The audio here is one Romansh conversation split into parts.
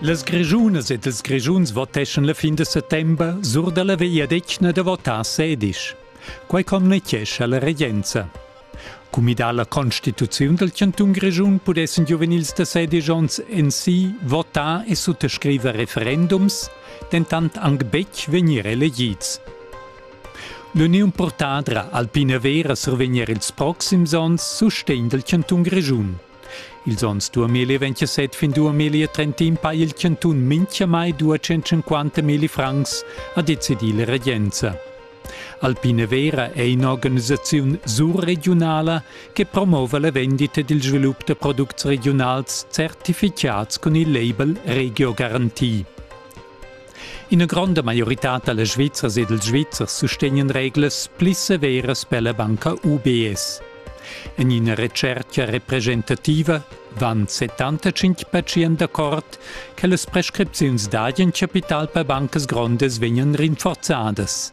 Las Grischunas ed ils Grischuns voteschan la fin da settember sur dalla vegliadetgna da votar sedisch. Quai communitgescha la regenza. Cumidà la constituziun dal cantun Grischun pudessan giuvenils da sedisch onns en si votar e suttascriver referendums, dentant anc betg vegnir elegids. L'uniun purtadra Alpina Vera survegner ils proxims onns sustegn dal cantun Grischun. Ils onns 2027 fin 2031 ha il chantun mintgamai 250 milli francs, ha decidì la regenza. Alpine Vera è in'organisaziun surregiunala che promova la vendita ed il svilup da products regiunals certificads cun il label Regio Garantie. Ina gronda maioritad da Svizzers e dals Svizzers sustegnan reglas pli severas per la banca UBS. En ina retschertga representativa van 75 pertschient d'accord che las prescripziuns dad in capital per bancas grondas vegnan rinforzadas.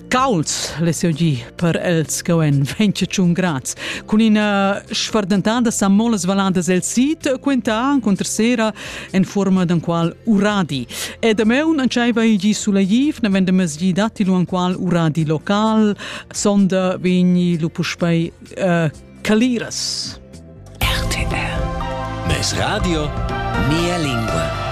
Cauls lesiu gi per els che en venche tschun grads. Cun ina sfardentada sa molas valadas el sit quenta contra sera en forma d'an qual uradi. E da meun antscheiva igi suleiv, ne vende mesgi datti lu an qual uradi local, sonda vegni lu puspei uh, caliras. RTL. Mes radio, mia lingua.